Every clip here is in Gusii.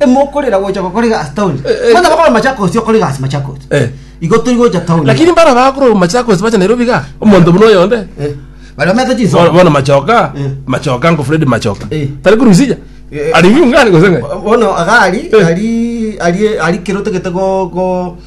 Emokorera gocha gokoriga ase town. Eh, eh. Muna bakore Machakos okoriga ase Machakos. Eh. Igo tori gocha town. lakini mbara bakoro machakos bacha nairobi ga omonto buna oyonde Eh. Bari bamete chiso. Bono- bono machoka Eh. machoka ngo fred machoka Eh. tari kurusija Eh. ari viungani gosenge Bono agari Eh. ari ari ari kirotogete go go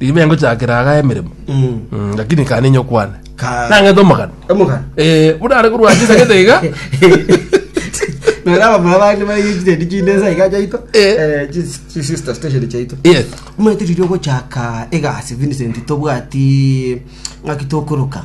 Ribe engochakera aga emeremo. Mm. Mm, lakini kane inyo kwane. Ka- Nang'ete omogano. Omogano. Eh, buna are korwa ase sagete iga. Nora abamura bande bari incident chinde sa iga chaito. Eh. Eh, chi- chi sister station chaito. Yes. Mwetiriri ogochaka egasi Vincent tobwati ng'aki tokoroka.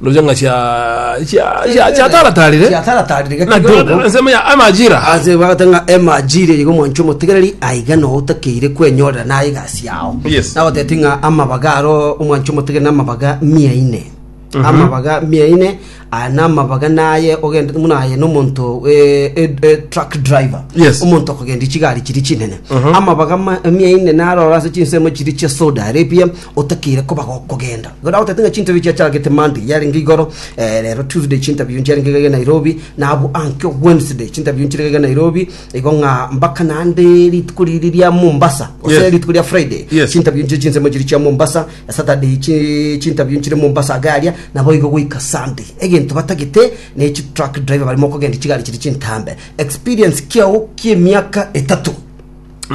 Ndoche ng'a cia cia cia cia tara tarire. Cia tara tarire gaki Naki gogo. ona nsemo ya amajira. Ase bagata ng'a emajire igo mwanche omotegereri aiga no otakeire kwenyorera naye egasi yao. Yes. Nagoteti ng'a amabaga aro omwanche omotegereri na amabaga mia ine. Amabaga mia ine aya na amabaga naye ogende muna aye no omonto eh, eh, eh, truck driver. Yes. Omonto okogendia chigari chiri chinene. Amabaga ma- mia ine narora ase chinsemo chiri chia soda aripia otakeire koba gokogenda. Igo nagotebete ng'a chinterview chiachagete Monday yarenge igoro, rero Tuesday chinterview nchiarenge iga iga Nairobi, na abwo anke Wednesday chinterview nchire iga iga Nairobi, igo ng'a mpaka naende rituko riria ria Mombasa, gose Yes. rituko ria Friday, Yes. chinterview nchire chinsemo chiri chia Mombasa, Saturday chi- chinterview nchire Mombasa iga aria, naboigo goika Sunday. Egento batagete ne chi truck driver barimo kogenda chigari chiri chintambe. Experience kiao kiemiaka etato.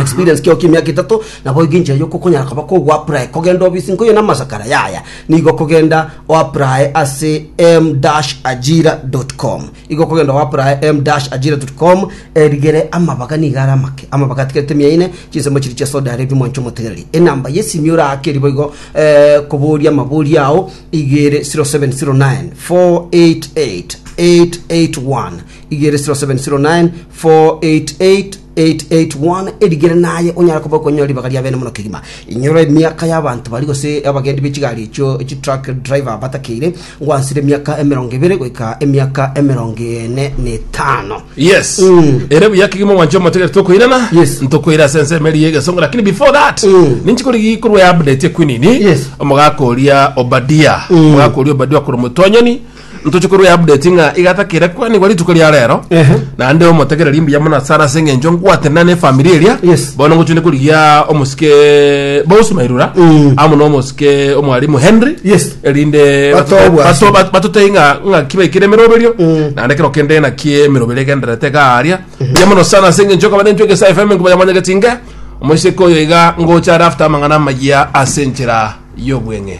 experience kio kimiaka etato naboigo enchera yokokonyara koba kogwaprae kogenda obisi nkoyo na masakara yaya nigo kogenda oaprae ase m dash ajira com igo kogenda oaprae m dash ajira com erigere amabaga nigo ara amake amabaga atigerete mia ine chinsemo chiri chia soda arebi mwancho motegereri enamba yesimi oraake eri boigo eh, koboria amabori ao igere 0709 488 881 igere 0709 488 881 erigerene aye onyare koba okonyora ribaga ria bene mono kegima. Inyora emiaka y'abanto baria gose abageni be chigari echio chitruck driver batakeire ngwansire emiaka emerongo ebere goika emiaka emerongo ene na etano. yes Mm. ere buya kegima mwancho motegere tokoirana Yes. ntokoira ase ensemo eri y'egesongo lakini before that Mm. ninchi kori gikorwa ya update ekwinini Yes. omogaka oria obadia omogaka oria obadia okora omotonyoni Ntoche korwa ya update ng'a igatakire kwanigwa rituko ria rero Ehe. naende omotegereri mbuya mono asara ase eng'encho ngwatenena ne famiri eria Yes. bono ngochende korigia omosike bosi mairura Mm. amo na omosike omwarimu henry Yes. erinde Batoe batote- bwasi. bato- bat- batotei ng'a ng'a kibaikire emeroberio Mm. naende kero kende ng'a kie emeroberi egenderete garia mbuya mono sana ase eng'encho okaba nentwe egesa fm nkobayamanyegeti nge omosike oyo iga ngocha are after amang'ana amaya ase enchera y'obweng'e